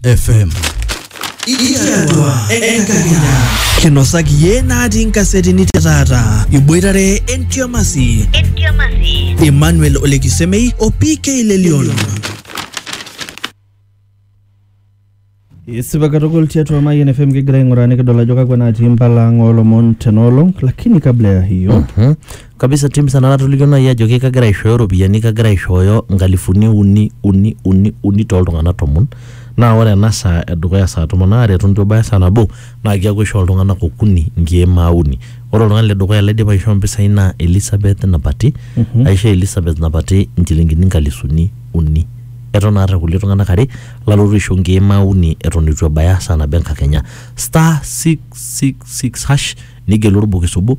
FM. Itiatua enkakenya. Kinosaki ye natii nkasetini te taata. Iboitare entiamasi. Entiamasi. Emmanuel Olekisemei o PK Lelion. Isipa katukul tiatua Mayian FM kigira aing'uraa nikidol ajo kakwa natii mpala ang' oolomon tenoolong lakini kabla ya hiyo Mhm. kabisa tim sana natolikio naaji ajoki kagira aishooyo iropiyiani kagira aishooyo nkalifuni uni uni uni uni tooltung'anak tomon naa ore ena saa edukuya saa tomon aare eton itu ebaya saa nabo naa keeku aishoo iltung'anak okuni nkiemaa uni ore oltung'ani ledukuya laidipa aishoo impisai naa Elizabeth napati aisho Elizabeth napati inchilingini inkalisuni uni eton aata kulie tung'anak are lalotu aisho nkiemaa uni eton itu ebaya saa nabo enkakenya star 666 hash nigelu orbokis obo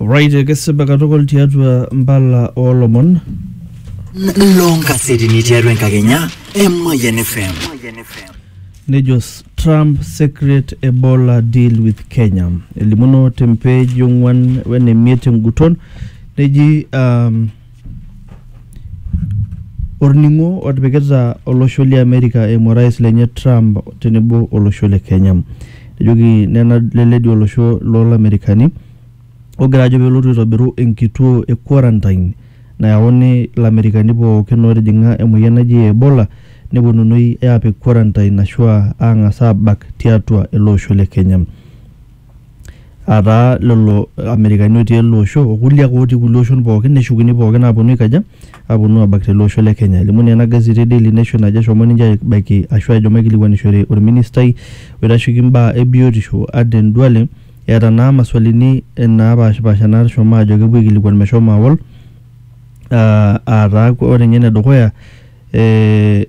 Right, ekesipa katukul tiatua mbala olomon. loo nkasetini tiatua enkakenya e Mayian FM. Nejo s- Trump secret Ebola deal with Kenya. Elimuno tempeji ong'uan wene miet enguton neji um, Orning'o otipikita olosho le Amerika eimu orais lenye Trump tenebo olosho le Kenya. Ejoki nena leledi olosho loo Lamerikani ogira ajo pelotu aitobiru enkituo e quarantine nayauni Lamerikani pookin otijing'a emoyian naji Ebola neponunui apik quarantine ashua ang'as abak tiatua ele osho le Kenya. ataa lelo amerikani otii ele osho okulie ake otii kulie oshon pookin neshukuni pookin aponu aikaja aponu abak tele osho le kenya elimu naa ena gazeti e daily nation ajo eshomo ninche aibaiki ashu ehomo aikilikuanishore orministai oitasheki imbaa ebiotisho Aden duale eeta naa maswalini napashipasha nashomo ajo kepuo aikilikuan meshomo awol uh ataa ore inye enedukuya eh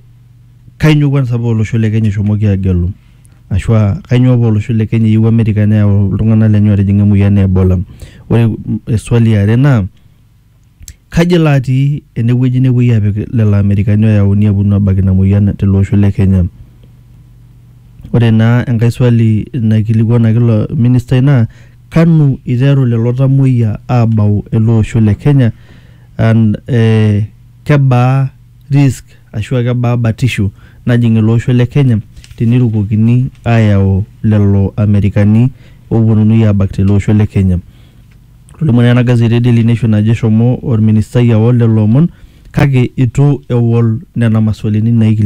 kainyoo kwanza paa olosho le kenya eshomoki agelu. Ashu aa kainyioo paa olosho le Kenya eyieu Amerika neyau iltung'anak lenye ootijing'a emoyian e Ebola. Ore eswali e are naa kaji elo atii ene wueji nepuoi aapik lelo Amerikani ooyauni aaponu aabak ina moyian tele osho le Kenya. Ore naa enkae swali naikilikuanaki ilo ministai naa kanu iteru lelo tamuoyia aabau ele osho le Kenya and kebaa risk ashu aa kebaa batisho najing ele osho le Kenya tenirukokini aayau lelo Amerikani oopuonunui aabak tele osho le Kenya. Etolimuo naa ena gazeti e Daily Nation ajo eshomo olministai aol lelo omon kake eitu eol nena maswalini naaikilikwanaki.